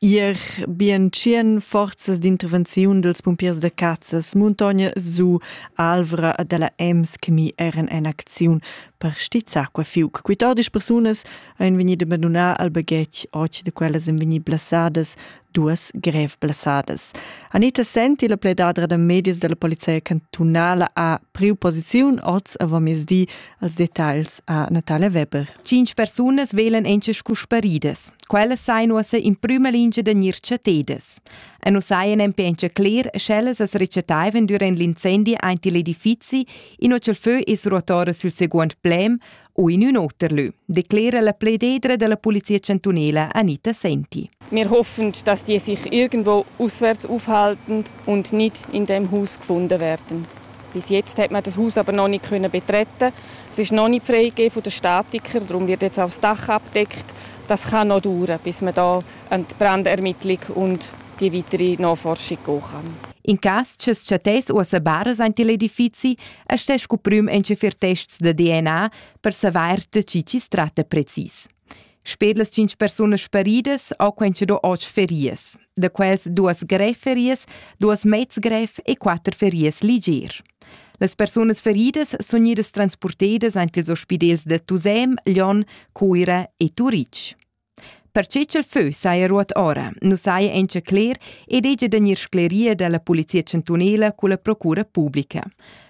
Ir bien tschien forzas d'intervenziun dels pumpiers de Cazzas, Muntogna su, Alvra e della Ems che mi eran en acziun per stizzar qua fiuc. Quitodisch persunas ein vegnide abandonà al baghetg och de quellas ein vegnit blasadas, duas grev blasadas. Anita Senti, la pledadra de medias della polizia cantunala, ha priu posiziun oz a vomiesdi Als detagls ha Natale Weber. Cinc persunas velen encha scu sparidas. Quellas sain uossa in prüma lingia da gnir chatedas. E nu sajan empencha cler, sch'ellas as rechataivan durant l'incendi aint il edifizi, inua cha'l fö es ruotora sül seguond plem u in ün oter lö, declera la plededra dalla Polizia Chantunela Anita Senti. Wir hoffen, dass die sich irgendwo auswärts aufhalten und nicht in dem Haus gefunden werden. Bis jetzt hat man das Haus aber noch nicht können betreten. Es ist noch nicht freigegeben von den Statikern, darum wird jetzt auch das Dach abdeckt. Das kann noch dauern, bis man da an die Brandermittlung und die weitere Nachforschung gehen kann. In cas che chattais uossa baras aint il edifizi, astè scu prüm entschafir tests da DNA per savair da chi chi s tratta precis. Sper las 5 persunas sparidas ho quentscha do oggi ferias. Da quels duas greferias, duas mezgref e quatter ferias ligier. Las persunas feridas sun idas transportedas ant ils ospidels da Tusem, Lyon, Cuira e Turitg. Perche ch'el fö saja ruot ora, nu saja encha cler ed hegia da gnir scleria da la Polizia chantunela culla Procura publica.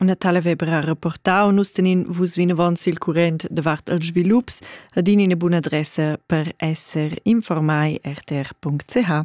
Una tala vebra rapportau nus tenin vus vinavon sil current davart els svilups ad in ina buna adressa per esser informai rtr.ch.